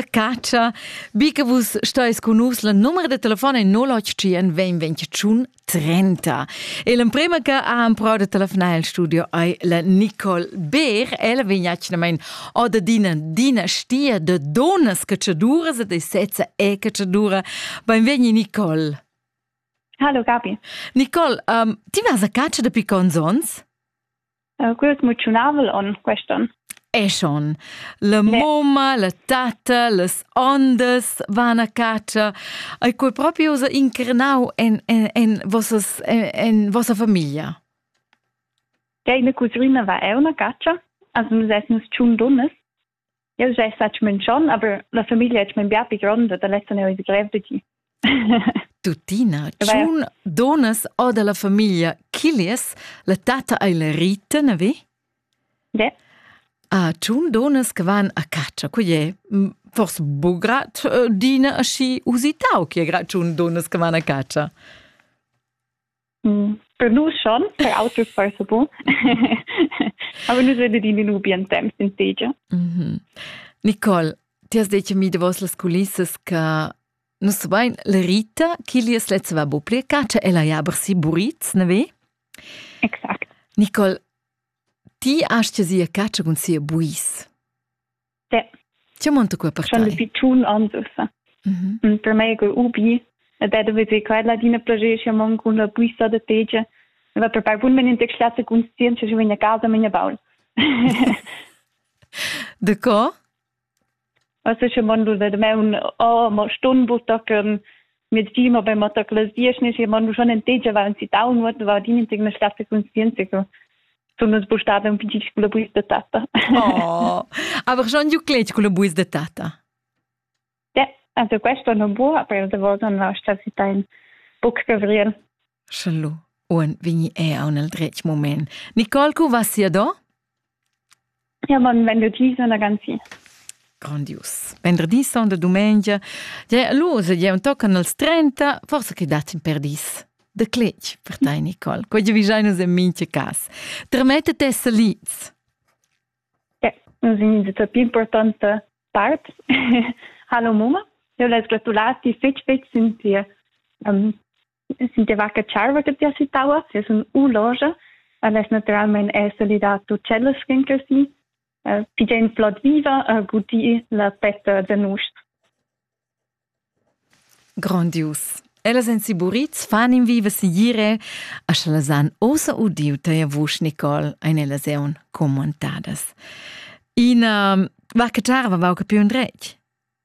catscha, bi che vus stais con nus, la numero de telefon è 081 20 30. E l'emprema che ha improvat de telefonare al studio è la Nicole Beer. Ella vegn atgnamain oder d'ina dinastia de donas cacciaduras e de sezza e cacciadura. Benvegni Nicole. Hallo Gabi. Nicole, um, ti vas a caccia dapi cons ons? Quel es moziunavel on quest'on. Eschon. La mumma, la tatta, las ondas van a catscha. Ei quei propi usa incrinau en, en, en, vossas, en, en vossa famiglia? Ja, in cusrina va eu na catscha, as nus essen nus tschun dunnas Jeu jai sec munchon, aber la famiglia è min bia pi gronda da lezza neu il grev de gi. Tuttina, tschun donas o dalla famiglia Killies, la tata ei la Rita, na vi? Ja. A tschun donas che van a caccia, co è? Forse bu grat dina aschi usitau che gra tschun donas che van a caccia? Per nus schon, per auters forse bon. Aber nus vedet in un bien temps in tegia. Mhm. Nicole, ti has detto mi davos las culissas che nus sapein la Rita chi li es lezza va bu pli caccia e la ja aber si buritz, ne ve? Exakt. Nicole, ti hast ja sia caccia cun sia buis. Ti monta qua per tai. Di tun andusa. Per me go ubi. Et da vezi quella dina progecia mon con la buisa de tegia. Va per per wenn in tec schlasse conscient che vegna casa menia baul. De co? Also schon mal de me un oh mo stun buttaken mit Team, aber man da glasiert nicht, man muss schon ein Teacher war und sie down wurde, war die nicht eine starke Konsistenz. So. Sono spostate un piccino con le buis de tata. Oh, aber schon giù cleci con le buis de tata. Ja, also questo non può, aber da volta non sta si tain buc gavrieren. Sche lu uon vegni eau nel dretg moment. Nicole, cu va sia do? Ja, bon venderdi, sono ragazzi. Grandius. Venderdi son de dumengia. Ja, lu se ja un tocan als 30, forse che datsin per dis. De clec per tai, Nicole. Quei vi jainus en mince cas. Trmetet esse liz. Ja, nos in de più importante part. Hallo Mama. Eu les gratulati fetch fetch sind dir um, si deva che tscharva che ti citava, se sun u loja, aless naturalmente è solidato cellas che così, pi gen plot viva a gudir la petta da nus. Grandius. Ellas en Siburits fan in viva siire, a sch'ellas han osa udiu teia vusch, Nicole, ein ellas eun commentadas. Ina, va che tscharva va che più un dretg?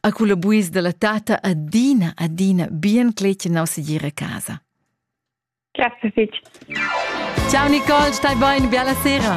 A culla buis dalla tatta adina, adina bien cletgenau segir a casa. Grazie fitg. Ciao Nicole, stai bene, bella sera.